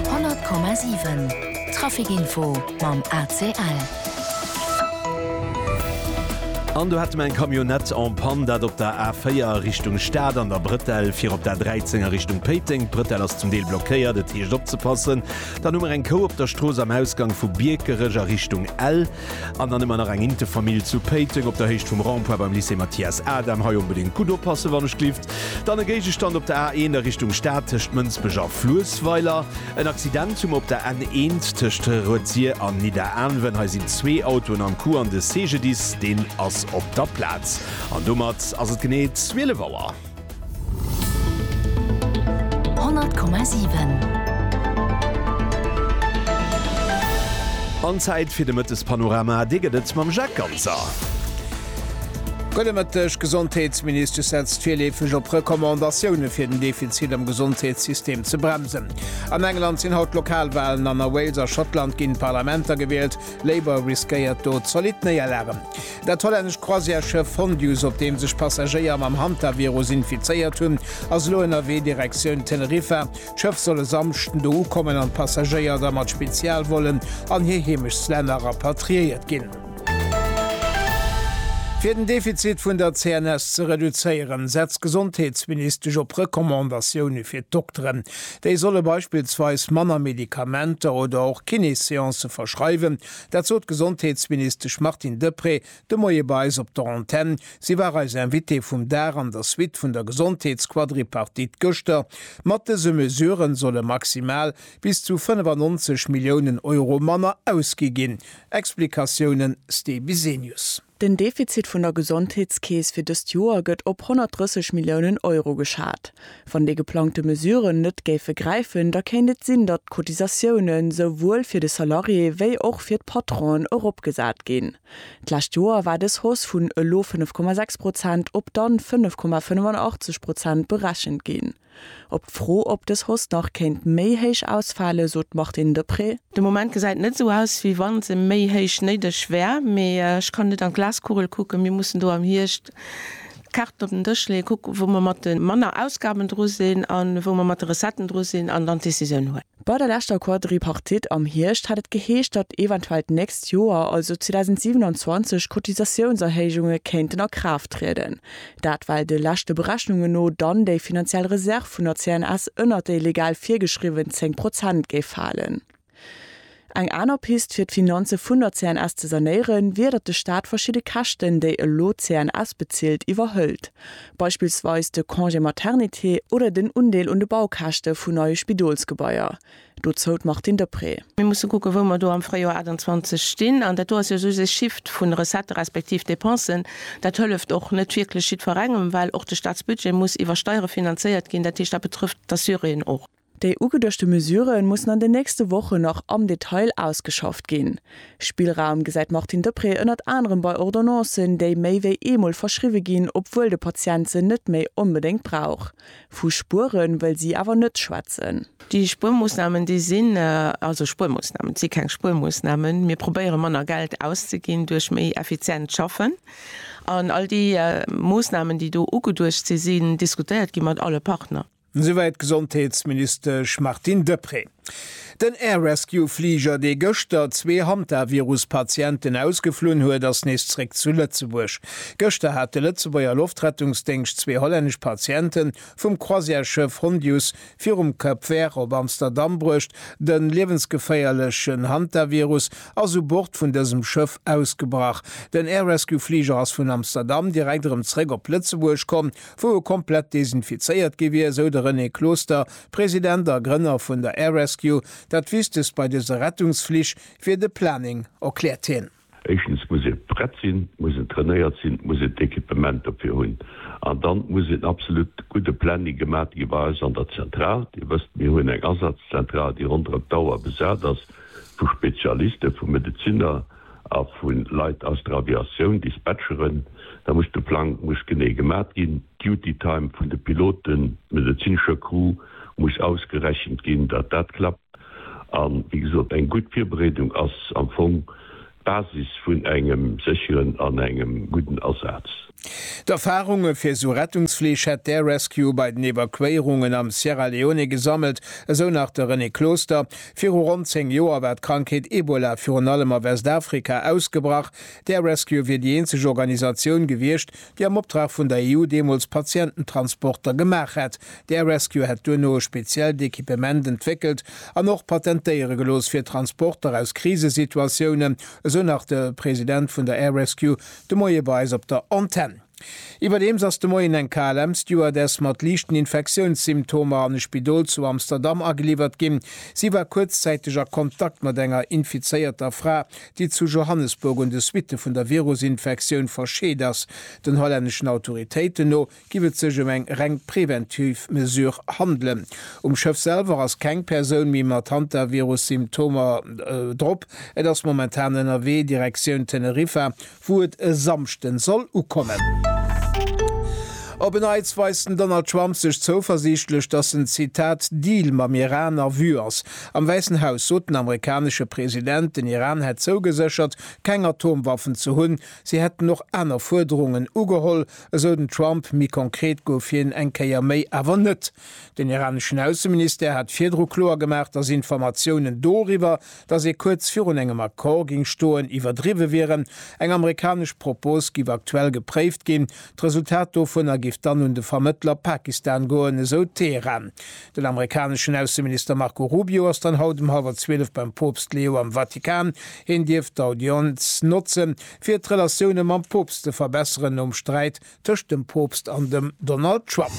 100,7 Trafic Info mam ACL. An do hätte mer eng Camionnette en panne, dat op der A4 a Richtung Stad an der Bretelle fir op d'A13 a Richtung Péiteng. D'Bretelle ass zum Deel blockéiert, et heescht opzepassen. Dann hu mer eng Kou op der Strooss am Ausgang vu Biekerech a Richtung Ell. An dann hu mer nach eng Intefamill zu Péiteng op der Héicht vum Rond-point beim Lycée Mathias Adam. Hei onbedéngt gutt oppassen, wann ech glift. Dann e Géigestand op der A1 a Richtung Stad tëscht Mënsbech a Fluessweiler. En Accident hu mer op der N1 tëscht Rëtzier an Nidderaanwen. Hei sinn zwee Autoen am Coup an de CGDIS, deen ass op der Plaz. An domat ass et genee 12 Auer. 100,7. An Zäit fir de Mëttespanorama. Dee gëtt et mam Jacques Ganser. Gudde Mëtteg. D'Gesondheetsministesch setzt virleefeg op Recommandatioune fir den Defizit am Gesondheetssystem ze bremsen. An England sinn haut d'Lokalwalen an a Wales a Schottland ginn d'Parlamenter gewielt. Labour riskéiert do zolidd Néierlagen. Dat hollännescht Croisièresschëff Fondius, op deem sech Passagéier mam Hantavirus infizéiert hunn, ass elo ënnerwee Direktioun Teneriffa. D'Schëff soll e Samschden do ukommen an d'Passagéier da mat Spezialvollen an hir Heemechtslänner rapatriéiert ginn. Fir den Defizit vun der CNS ze reduzéieren, setzt d'Gesondheetsministesch op Recommandatioune fir d'Dokteren. Déi solle beispillsweis manner Medikamenter oder och Kiné-Seancë verschreiwen, Dat sot d'Gesondheetsministesch Martine Deprez de Moie bei eis op der Antenn. Si war eis Invitée vum Dag an der Suite vun der Gesondheetsquadripartite gëschter. Mat dëse Mesuren solle maximal bis zu 95 Milliounen Euro manner ausgi ginn. Explikatiounen, Ste Bisenius. Den Defizit vun der Gesondheetskeess fir dëst Joer gëtt op 130 Milliounen Euro geschat. Wann déi geplangte Mesuren net géife gräifen, da kéint et sinn, datt d'Cotisatioune souwuel fir de Salarié wéi och fir d'Patronen eropgesat ginn. D'lescht Joer war dës Hausse vun elo 5,6 Prozent op dann 5,85 Prozent berechent ginn. Op d'Fro, ob dës Hoss nach kéint méi héich ausfalen, sot d'Martine Deprez. De Moment gesäit net esou aus, wéi wa se méi héich néideg wär. Mee ech kann net an d'Glaskugel kucken. Mir mussen do am Hierscht d'Kaarten op den Dësch leeën, kucken, wou mer mat de manner Ausgaben dru sinn a wou mer mat de Recetten dru sinn an dann d'Decisioun huelen. Bei der leschter Quadripartite am Hierscht hat et geheescht, datt eventuell d'nächst Joer, also 2027, Cotisatiounserhéijunge kéinten a Kraaft trieden. Dat well de leschte Berechnunge no dann déi finanziell Reserv vun der CNS ënnert déi legal virgeschriwwen 10 Prozent géif falen. Eng aner Pist fir d'Finanze vun der CNS ze sanéieren, wier datt de Staat verschidde Käschten, déi elo d'CNS bezilt, iwwerhëlt. Beispillsweis de Congé maternité oder den Undeel un de Baukäschte vun neie Spidolsgebaier. Dozou d'Martine Deprez. Mir musse kucken, wou mer do am Fréijoer 28 stinn. An dat do ass jo soss ee Shift vun Recettë respektiv Dépensen. Dat hëlleft och net wierklech jiddwerengem, well och de Staatsbudget muss iwwer Steiere finanzéiert ginn. Dat heescht, dat betrëfft d'Assuréen och. Déi ugeduechte Mesure mussen an den nächste Wochen nach am Detail ausgeschafft ginn. Spillraum gesäit d'Martine Deprez ënnert anerem bei Ordonnancen, déi méi wéi eemol verschriwwe ginn, obwuel de Patient se net méi onbedéngt brauch. Vu Spuere wëll si awer net schwätzen. Déi Spuermoossnamen, déi sinn also Spuermoossnamen, et si keng Spuermoossnamen. Mir probéiere manner Geld auszeginn duerch méi effizient Schaffen. An all déi Moossnamen, déi do ugeduecht sinn, sinn diskutéiert gi mat alle Partner. Esouwäit d'Gesondheetsministesch Martine Deprez. Den Air Rescue Fliger, dee gëschter zwee Hantavirus-Patienten ausgeflunn huet, ass nees zréck zu Lëtzebuerg. Gëschter hat de Lëtzebuerger Loftrettungsdéngscht zwee hollännesch Patienten vum Croisière-Schëff Hondius virum Cap Vert op Amsterdam bruecht. De liewensgeféierlechen Hantavirus ass u Bord vun dësem Schëff ausgebrach. Den Air Rescue Fliger ass vun Amsterdam direkt erëm zréck op Lëtzebuerg komm. wou e komplett desinfizéiert gi wier, esou de René Closter, President a Grënner vun der Air Rescue. Dat Wichtegst bei dëse Rettungsflich wier de Planning, erkläert hien. Éischtens muss ee prett sinn, et muss een trainéiert sinn, et muss een d'Equipement dofir hunn an dann muss een absolut gudde Planning gemaach gi bei eis an der Zentral. Dir wësst, mir hunn eng Asazzentrale, déi ronderëm d'Auer besat ass vu Spezialiste, vu Medezinner, a vu Leit aus der Aviatioun, Dispatcheren, da muss de Plang muss genee gemat ginn, d'Duty-Time vun de Piloten, medezinescher Crew muss ausgerechent ginn, datt dat klappt. A wéi gesot, eng gutt Virbereedung ass am Fong d'Basis vun engem sécheren an engem gudden Asaz. D'Erfarunge fir esou Rettungsflich hätt d'Air Rescue bei den Evakuéierungen am Sierra Leone gesammelt, esou nach de René Closter. Viru ronn 10 Joer war d'Krankheet Ebola virun allem a Westafrika ausgebrach. D'Air Rescue wier déi eenzeg Organisatioun gewiescht, déi am Optrag vun der EU deemools Patiententransporter gemaach hätt. D'Air Rescue hätt duerno e speziellt Equipement entwéckelt an och patentéiere gelooss fir Transporter aus Krisesituatiounen, esou nach de President vun der Air Rescue, De Moie bei eis op der Antenn. Iwwerdeems ass de Moien eng KLM-Stewardess mat liichten Infektiounssymptomer an e Spidol zu Amsterdam ageliwwert ginn. Si war kuerzzäiteg a Kontakt mat enger infizéierter Fra, déi zu Johannesburg un de Suitte vun der Virusinfektioun verscheet ass. Den hollänneschen Autoritéiten no giff et sech ëm eng reng preventiv Mesure handelen. Um Schëff selwer ass keng Persoun méi mat Hantavirus-Symptomer drop. Et ass momentan ënnerwee Direktioun Teneriffa, wou et e Samschden soll ukommen. Op en Neits weist den Donald Trump sech zouversiichtlech, dass en, Zitat, Deal mam Iran a Vue ass. Am Wäissen Haus sot den amerikanesche President, den Iran hätt zougeséchert, keng Atomwaffen ze hunn. Si hätten och aner Fuerderungen ugeholl. Esou den Trump. Méi konkret gouf hien eng Kéier méi awer net. Den iraneschen Ausseministère hat virdru kloer gemaach, datt Informatiounen doriwwer, datt ee kuerz virun engem Accord géing stoen, iwwerdriwwe wieren. Eng amerikanesch Propos géif aktuell gepréift ginn. D'Resultat dovunner géif dann un de Vermëttler Pakistan goen, esou Teheran. Den amerikaneschen Ausseminister Marco Rubio ass dann haut um hallwer 12 beim Poopst Leo am Vatikan. Hien dierft d'Audienz notzen. fir d'Relatioune mam Poopst ze verbesseren nom Sträit tëscht dem Poopst an dem Donald Trump.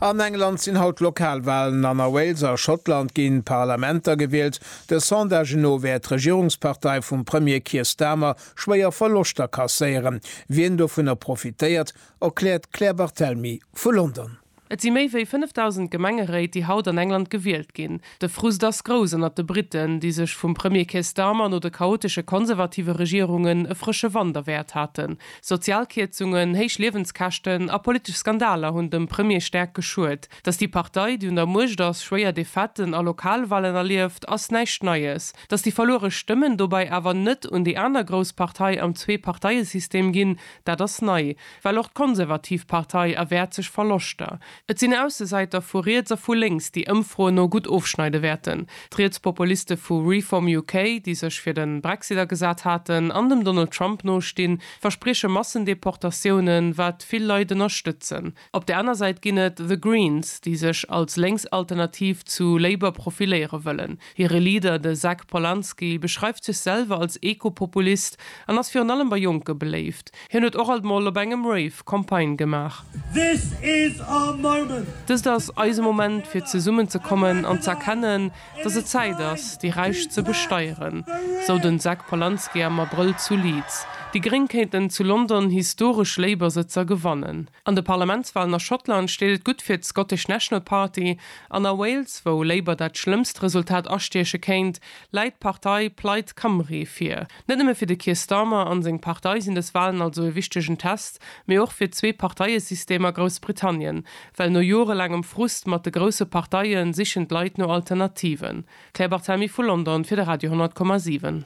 An England sinn haut d'Lokalwalen an a Wales a Schottland ginn d'Parlamenter gewielt. De Sondage no wäert d'Regierungspartei vum Premier Keir Starmer schwéier Verloschter kasséieren. Wien dovunner profitéiert, erkläert d'Claire Barthelmy vu London. Et si méi wéi 5.000 Gemengeréit, déi haut an England gewielt ginn. De Frust ass grouss ënnert de Britten, déi sech vum Premier Keir Starmer no de chaotesche konservative Regierungen e frësche Wand erwäert haten. Sozial Kierzungen, héich Liewenskäschten a politesch Skandaler hunn dem Premier staark geschuet. Datt déi Partei, déi un der Muecht ass, schwéier Defaitë a Lokalwahlen erlieft, ass näischt Neies. Datt déi verluere Stëmmen dobäi awer net un déi aner grouss Partei am Zwee-Parteie-System ginn, dat ass nei. Well och d'Konservativ Partei erwäert sech Verloschter. Et sinn Aussesäiter vu riets a vu lénks, déi Ëmfroen no gutt ofschneide wäerten. D'Rietspopuliste vu Reform UK, déi sech fir de Brexit agesat haten an dem Donald Trump nostinn, versprieche Massendeportatiounen, wat vill Leit ënnerstëtzen. Op der aner Säit ginn et The Greens, déi sech als lénks Alternativ zu Labour profiléiere wëllen. Hire Leader, de Zach Polanski, beschreift sech selwer als Ekopopulist an ass virun allem bei Jonke beléift. Hien huet och alt mol op engem Rave Campagne gemaach. This is our moment! Dëst ass eise Moment, fir zesummen ze kommen an ze erkennen, datt et Zäit ass, déi Räich ze besteieren, sou den Zach Polanski am Abrëll zu Leeds. Déi Gréng kéinten zu London historesch Labour-Sëtzer gewannen. An de Parlamentswalen a Schottland steet et gutt fir d'Scottish National Party, an a Wales, wou Labour dat schlëmmst Resultat astieche kéint, läit d'Partei Plaid Cymru vir. Net nëmme fir de Keir Starmer an seng Partei sinn dës Walen also e wichtegen Test, mee och fir d'Zwee-Parteie-System a Groussbritannien, well no jorelaangem Frust mat de grousse Parteie sichen d'Leit no Alternativen. Claire Barthamy vu London fir de Radio 10,7.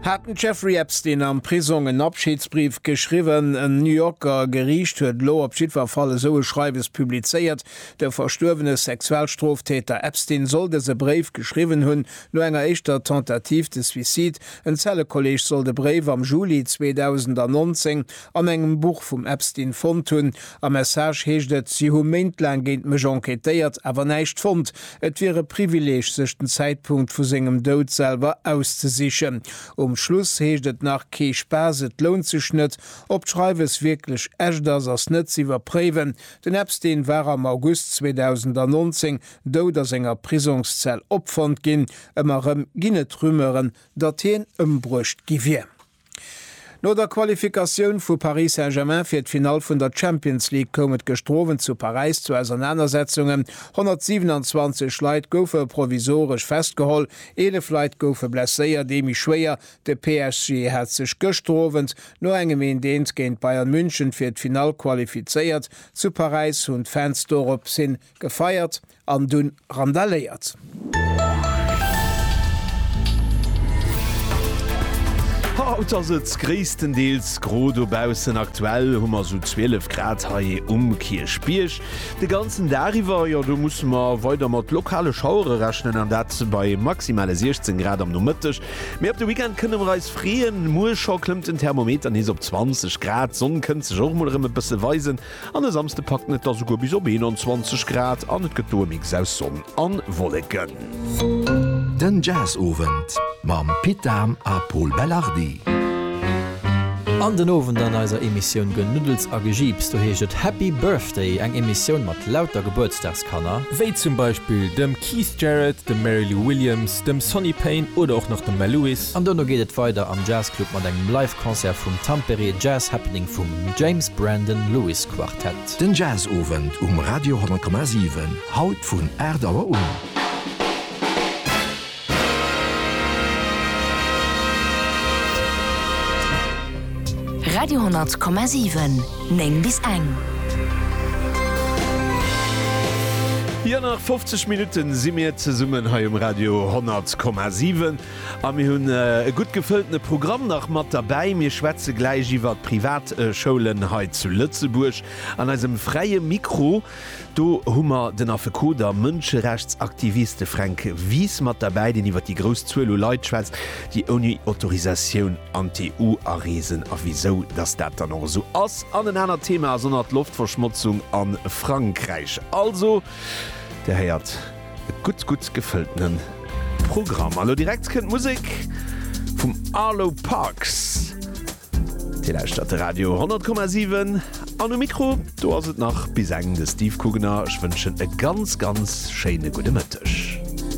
Hat den Jeffrey Epstein am Prisong en Abschiedsbrief geschriwwen? En New Yorker Geriicht huet elo op jiddwer Fall esou e Schreiwes publizéiert. De verstuerwene Sexualstroftäter Epstein soll dëse Bréif geschriwwen hunn, no enger éischter Tentative de suicide. En Zellekolleeg soll de Bréif am Juli 2019 an engem Buch vum Epstein fonnt hunn. Am Message heescht et, Si hu méintlaang géint mech enquêtéiert, awer näischt fonnt. Et wier e Privileeg, sech den Zäitpunkt vu sengem Doud selwer auszesichen. Um Schluss heescht et nach, Kee Spaass, et lount sech net. Ob d'Schreiwes wierklech echt ass, ass net ze iwwerpréiwen. Den Epstein war am August 2019 dout a senger Prisongszell opfonnt ginn. Ëmmer erëm ginn et Rumeuren, datt hien ëmbruecht gi wier. No der Qualifikatioun vu Paris Saint-Germain fir d'Finall vun der Champions League koum et gëschter Owend zu Paräis zu Ausernanersetzungen. 127 Leit goufe provisoresch festgeholl, 11 Leit goufe blesséiert, ee méi schwéier. De PSG hat sech gëschter Owend no engem Eent-Eent géint Bayern München fir d'Finall qualifizéiert. Zu Paräis hunn d'Fans dorop hin Gefeiert an dunn randaléiert. Haut ass et gréisstendeels gro dobaussen, aktuell hu mer sou 12 Grad hei um Kierchbierg. De ganzen Dag iwwer, jo, do musse mer weider mat lokale Schauere rechnen, an dat bei maximale 16 Grad am Nomëtteg. Mee op de Weekend kënne mer eis freeën, muer scho klëmmt den Thermometer nees op 20 Grad. D'Sonn kënnt sech och mol erëm e bësse weisen. An e Samsde packt en et da souguer bis op 21 Grad an et gëtt do e Mix aus Sonn a Wolleken. Den Jazzowend mam Pit Dahm a Pol Belardi. An den Owend an eiser Emissioun Genuddels a Gejiips, do heescht et Happy Birthday, eng Emissioun mat lauter Gebuertsdagswënsch. Kanner, wéi zum Beispill dem Keith Jarrett, dem Mary Lou Williams, dem Sonny Payne oder och nach dem Mel Lewis. An dono geet et weider am Jazzclub mat engem Live Concert vum Tampere Jazz Happening vum James Brandon Lewis Quartet. Den Jazzowend um Radio 100,7, haut vun 8 Auer un. Radio 10,7 9 bis eng. Jo nach 50 Minutten si mir zesummen hei um Radio 10,7 a mir hunn e gutt gefëlltene Programm nach mat derbäi. Mir schwätze gläich iwwert d'Privatschoulen hei zu Lëtzebuerg an eisem fräie Mikro. Do hu mer den Affekot a Mënscherechtsaktiviste Fränk Wies mat derbäi, deen iwwer déi grouss Zuel u Leit schwätzt, déi ouni Autorisatioun an d'EU areesen a wisou datt dat dann och esou ass. An en anert Thema ass ënnert Loftverschmotzung a Frankräich. Also, Dir héiert, e gutt, gutt gefëlltene Programm. A lo direkt kënnt d'Musek vum Arlo Parks. Dir lauschtert de Radio 10,7 an um Mikro, do ass et nach bis eng de Steve Kugener. Ech wënschen e ganz, ganz schéine gudde Mëtteg.